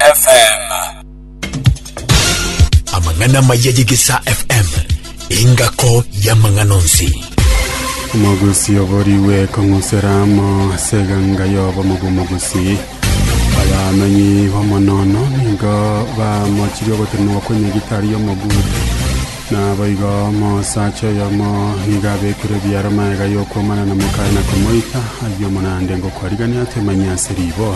FM. amang'ana amaya yegesa fm engako y'amang'ana onsi Omogusi oborigwe kong'usera amo ase eganga y'obomo bw'omogusi. Abamenyi b'omonono nigo bamochirie ogotemerwa kw'enyagitari y'omogusi. Naboigo omosacha oyomo nigo abekire ebiara magega y'okwomana na mokaye na komoita ayio omonande ngokwarigania toimanyia ase riboa.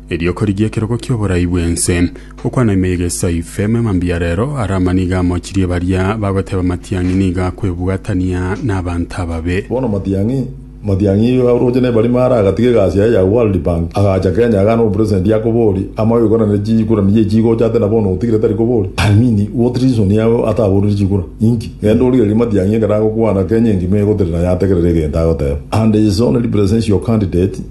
Erio korigia ekerogo ki'oborai bw'ense, okwana ime iga esaife, emema mbuya rero, Arama nigo amochirie baria bagoteba amatiang'i nigo akwebwatania nabanto ababe. Bono Matiang'i, Matiang'i iga oroche nebarimo are agatiga egasi yaye ya World Bank agacha Kenya agane obopresedenti akobori ama oigokana nere chikura niye chigocha ate nabono otigire tari kobori I mean what reason yago ataborire chikura inki genda origererie Matiang'i ekero agokwana Kenya engima egoterera yategerera egento agoteba and is only presential candidate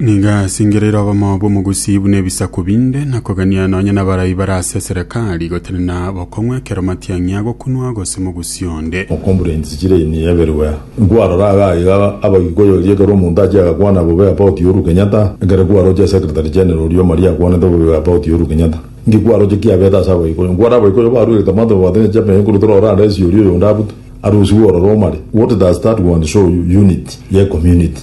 Nigo asingereire oboma bw'omogusii buna ebisaku binde, na kogania nonya nabarai bare ase eserekari, gotenena bokong'u ekero matiang'i agokunwa gose mogusii onde. Okombura ensichire eye niyeberwe nkwarora iga iga abagikuyu erio ekero omonto achia agakwana bobe about Uhuru Kenyatta ekero kwaroche secretary general oria omari akwanete bobe about Uhuru Kenyatta inki kwaroche kiabete ase abagikuyu nkware abagikuyu baruegete amato babwate ne champion ekuru tore orande ase oria oyonde abute arusigwe ororo omari what does that one show you unity ye community.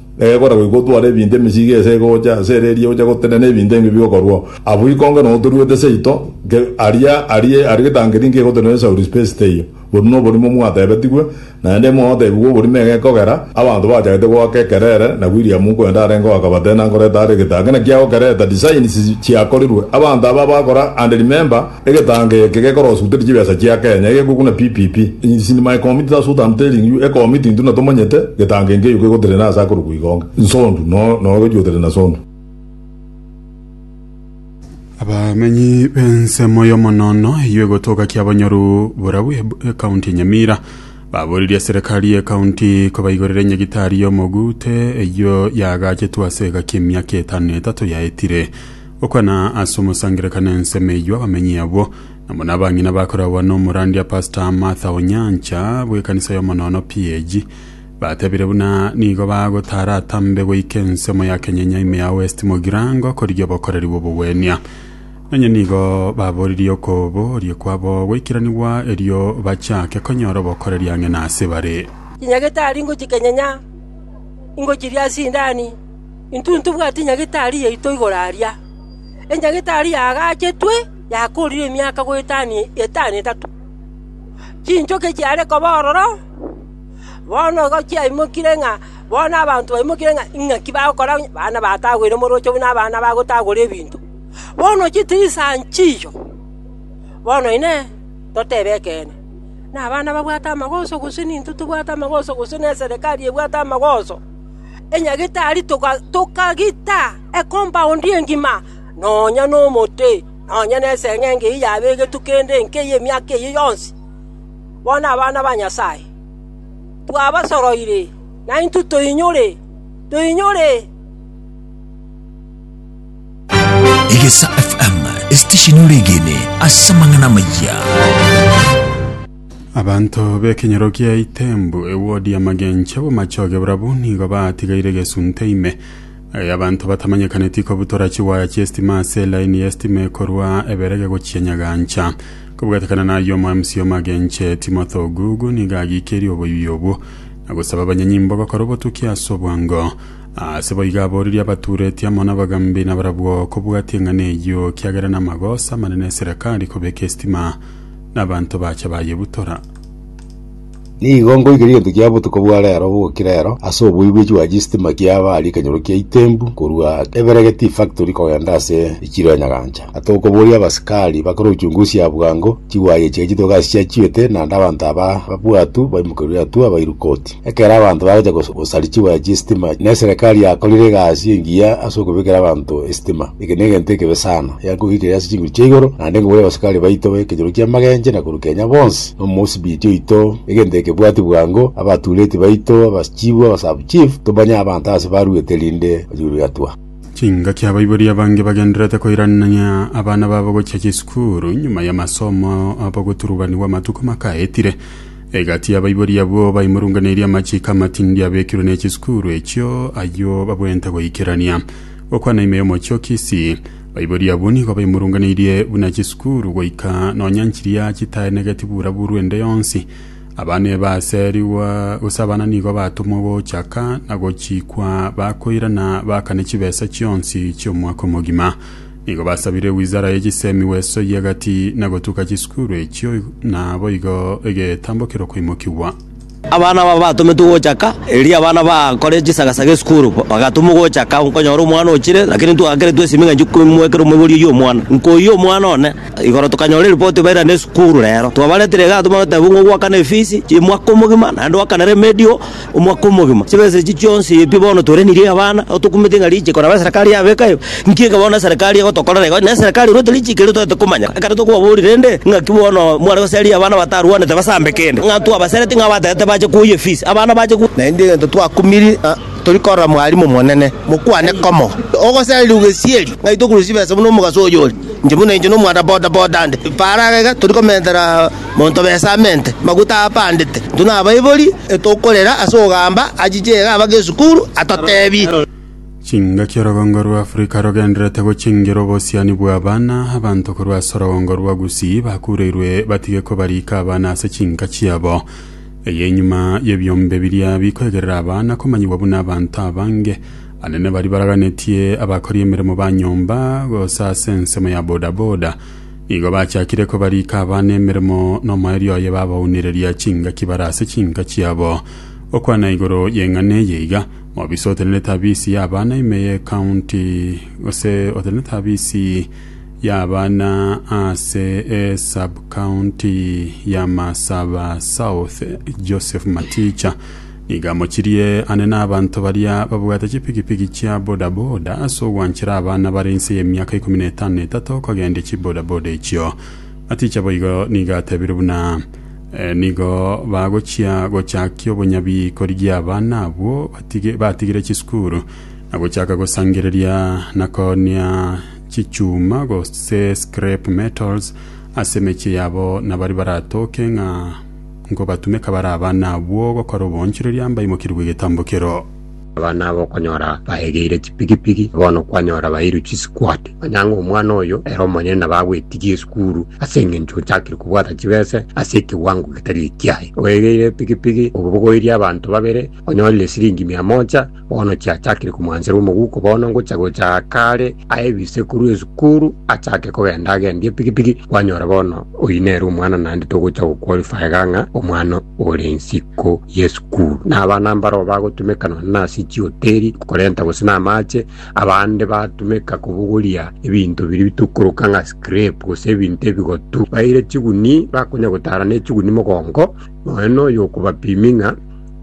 Egora goika otware ebinto emechiko ase egocha ase ere eria oche gotenena ebinto ebi bigokorwa. Abwo ikonge no toruete seito nke aria aria aria getangeri nke egotenena esauri space teiyo. Boru no oborimo mwatebetigwe, naende mwagotebigwa oborimo egekogera, abanto bachagete goaka ekerere, na William nkwenda arenge oaka batena nkoreta are egetangeri naki agokereta designs chiakorirwe. Abanto aba bagokora and remember, Egetango eke gekorosuteria chibesa chia Kenya egekwe buna PPP. In sin my committee that's what am telling you, ecommit intwe natomanyete getango enke eyio kegoterena ase akorokwa igonga. Nsondu, no, no gechuoterena sondu. Abamenyi b'ensemo y'omonono eyio egotoka kia Bonyoru Borau eb- ekaunti ya Nyamira baboririe serikali y'ekaunti kobaigorera enyagitari y'omoguute eyio yaagachetwe ase egaki emiaka etano na etato yaetire Gokwana ase omosangererekano ensemo eyio abamenyi abwo nabo nabang'ina bakoragwa nomorandia Pastor Martha Onyancha bw'ekanisa y'omonono PAG batebire buna nigo bagotara atambe goika ensemo ya Kenyenya ime ya West Mogirango korigia obokoreri bw'obogwenia nonye nigo baboririe okoboria kwabo goikiranigwa erio bachake konyora obokoreri ang'e nase bare. Chinyagete aria ingochi Kenyenya ingochiria ase indani. “Intwe ntibwati nyagetari yaito igoro aria. Enyagetari yaagachetwe yakoorire emiaka goetani etano etato. Chinchoke chiare koba ororo, bono igo chiaimokire ng'a bono abanto baimokire ng'a ing'aki bagokora bana batagwere omorocho buna abana bagotagora ebinto. Bono chitirisa nchiyo. Bono inee! Totebe ekeene, nabana babwate amagoso, gose nintwe tobwate amagoso, gose neserekari ebwate amagoso? enyagetari tokagita ekompaundi engima, nonya nomote, nonya neseng'enge eyio yabegetwe kende enke y'emiaka eyio yonsi. Bono abana ba Nyasae, twabasoroire, naintwe toinyore. Egesaa FM, estesheni ore egeene ase amang'ana amayia. Abanto b'ekenyoro kia Itembu, ewodi ya magencho b'omachoge barabwo nigo baatigaire egesunte ime y'abanto batamanyekaneti kobutora chiwaya chi'esitima ase elaini y'esitima ekorwa Eberege gochia Nyagancha. Kobwatekana n'ayio omoemsi omagencho Timothy Ogugu nigo agiikerie oboibi obwo na gosaba abanyanyimbo gokora obotuki ase obwango. Ase boigo aborerie abatuureti amo n'abagambi nabarabwo kobwatia eng'ana eyio kiagera namagoso amanene eserekari kobeka esitima nabanto bacha bayebutora. Nigo ngoigera egento kia botuko bwa rero bogokira ero ase oboigwechi bwa chistima kiaba aria ekenyoro kia Itembu korwa Eberegeti Factory kogenda ase echiro ya Nyagancha. Ata okoboria abasikari bakore uchunguzi ya bwango, chigwayi echiga chitoke ase chiachiete naende abanto aba ababwatu baimokerwe atua bairwe koti. Ekero abanto bagocha gos- gosarichigwa echie estima, neserekari yakorire egasi engiya ase okobekera abanto estima. Eke negento ekebe sana, yankogigire ase chinguru chia igoro, naende nkobwate abasikari baito b'ekenyoro ki'amagenche na korwa Kenya bonsi, na omosibiti oito, egento ekebwati bwango, abatureti baito, abaschifu, abasabuchifu, tobanye abanto aase baruete rinde bachie korigatua. Chingaki abaibori abange bagendererete koiranania abana babo gochia chisukuru nyuma y'amasomo abo goturubanigwa amatuko makaetire. Egati y'abaibori abwo baimorunganeirie amachiiko amatindi abekirwe ne chisukuru echio, ayio babweenta goikerania. Gokwana ime y'omochie-o-ki isi, baibori abwo nigo baimorunganeirie buna chisukuru, goika nonya nchiria chitaenegeti bura-buru ende yonsi. Abana eba aserigwa, gose abana nigo batomwa gochaka na gochiikwa bakoirana baakane chibesa chionsi chi'omwaka omogima. Nigo basabire wizara ye chisemi bw'esoyie egati na gotuka chisukuru echio, na boigo egetambo kerokoimokigwa. Abana aba batometwe gochaka, erio abana bakore chisagasaga esukuru bagatomwa gochaka. Nkonyora omwana ochire, lakini ntwakeretwe esimi ng'a inche komwekera omoibori oyio omwana. Nkoyia omwana one igoro tokanyora eripoti bairane esukuru rero. Twabaretire igaa tomanye goteba ng'a ogwakana efisi y'emwaka omogima, naende oakane remedial. omwaka omogima, chibesa echi chionsi pi bono torenirie abana, nabo tokumete ng'a riche koraba eserekari yabeka ebe. Inki ekero bono eserekari egotokorera igo, na eserekari erwete riche keria totaete komanya? Ekero tokobaboria rende, ng'aki bono mware goseria abana batarwanete basambe kende, ng'a twabasereti ng'a abataete bache koyia efisi, abana bache koyia. Naende egento twakumiri ng'a tori korora mwarimu omonene, mokwane komo, ogosererigwa gesieri, ng'ai tokorusia chibesa buna omogaso oyore, inche buna inche nomwana boda boda nde, faraga iga tori komentera. Monto b'Esamente, maguta apandete, intwe nabaibori, etokorera ase ogamba achiche iga abake esukuru, atotebi. Chingaki Orogongo rwa Afrika rogendererete gochingira obosiani bw'abana, Abanto korwa ase orogongo rwa Gusii bakureirwe batige kobariika abana ase chinka chiabo. Eye enyuma y'ebiombe biria bikoegerera abana komanyigwa buna abanto abange, abanene baria baraganetie abakori emeremo ba nyomba, gose ase ensemo ya bodaboda. Igo bachakire kobariika abana emeremo nomoerio oye babaunireria chingaki bare ase chinka chiabo. Gokwana igoro y'eng'ana eye iga, Mobisa otenerete abisi y'abana ime ye county gose otenerete abisi y'abana ase e sub county ya Masaba South Joseph Maticha Nigo amochirie ane nabanto baria babwate chipigipigi chia bodaboda ase ogwanchera abana bare inse y'emiaka ikomi na etano na etato kogendia chibodaboda echio. Aticha boigo nigo atebire buna nigo bagochia gochakia obonyabi korigia abana abwo batige batigire chisukuru na gochaka gosangereria na koonia chichuma gose scrap metals ase emechie yabo na baria baratoke ng'a Nkobatumeka bare abana abwo gokora oboonchoreria mbaimokerie bw'egetambo kero. Abana aba okonyora baegeire chipigipigi, na bono kwanyora baeirwe chisikwati. Manya ng'a omwana oyo ere omonyene nabo agwetigia esukuru ase engencho ochakire kobwata chibese ase ekewango getari ekiaye. Oegeire epigipigi, obogoirie abanto babere, onyorire esiringi mia moja, Bono chiachakire komwanchera omoguko bono ngochia gocha kaare aye ebiise korwa esukuru achake kogenda agendie epikipiki kwanyora bono oyi nere omwana naende togocha goqualifyga ng'a omwana ore nsiko y'esukuru. Na abana mbaroo bagotumeka nonya nase chihoteri korenta gose na amache, abande batumeka kobogoria ebinto biria bitokoroka ng'a scrap gose ebinto ebigotu. Baire chiguni bakonya gotara ne chiguni mogongo nonya noyo okobapimi ng'a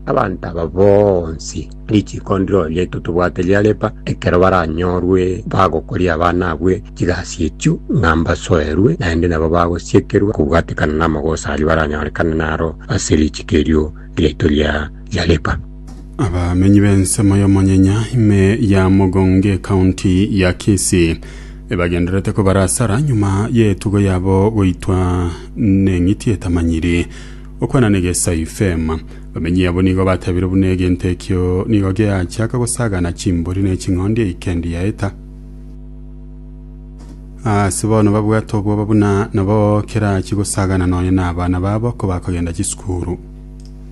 Abanto aba bonsi richiko ndiro riaito tobwate riareba, ekero baranyorwe bagokoria abana abwe chigasi echio ng'a mbasoerwe, naende nabo bagosiekerwa kobwatekana namagoso aria baranyorekane naro ase richiko erio riaito ria riareba. Abamenyi b'ensemo y'omonyenya ime ya Mogongo Ekaunti ya Kisii ebagendererete kobarasara nyuma y'etugo yabo goitwa neng'iti etamanyiri. Okwana nigo esao ifeema. Bamenyi abo nigo bateebire buna egento ekio nigo geachiaka gosagana chimbori ne ching'ondi eikendi yaeta. Ase bono babwate obwoba buna nabo kerachie gosagana nonya na abana babo kobakogenda chisukuru.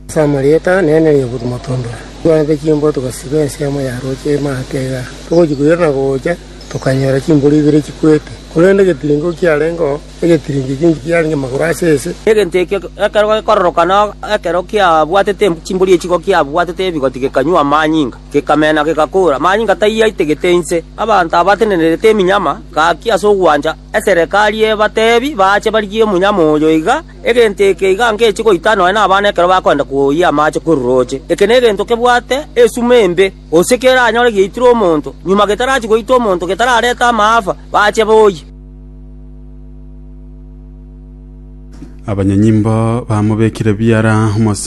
Ase amarieta nene ri'obotu motondwe, twanete chimbwa togasiba ensemo ya roche emate iga. Togochia koirana gocha, tokanyora chimbori ibere chikwete, korende getiringo kiarengeo. egetirinki kinki kiarenge magoro ase ense. Egento ekio ekero gekororoka na ekero kiabwatete chimbori echiko kiabwatete ebigoti gekanywa amanyinga, gekamena, gegakora. Amanyinga tayio aitegete inse. Abanto abatenenerete eminyama gaki ase ogwancha eserekari ebatebi baache barigie omonyama oyo iga, egento eke iga ngechie goita nonya nabana ekero bakoenda koyia amache korwa rooche. Eke negento kebwate esuma embe, gose keranyore giaitire omonto, nyuma getarachia goita omonto getararete amaafa, baache boyie. abanyanyimbo bamobekire biara omosa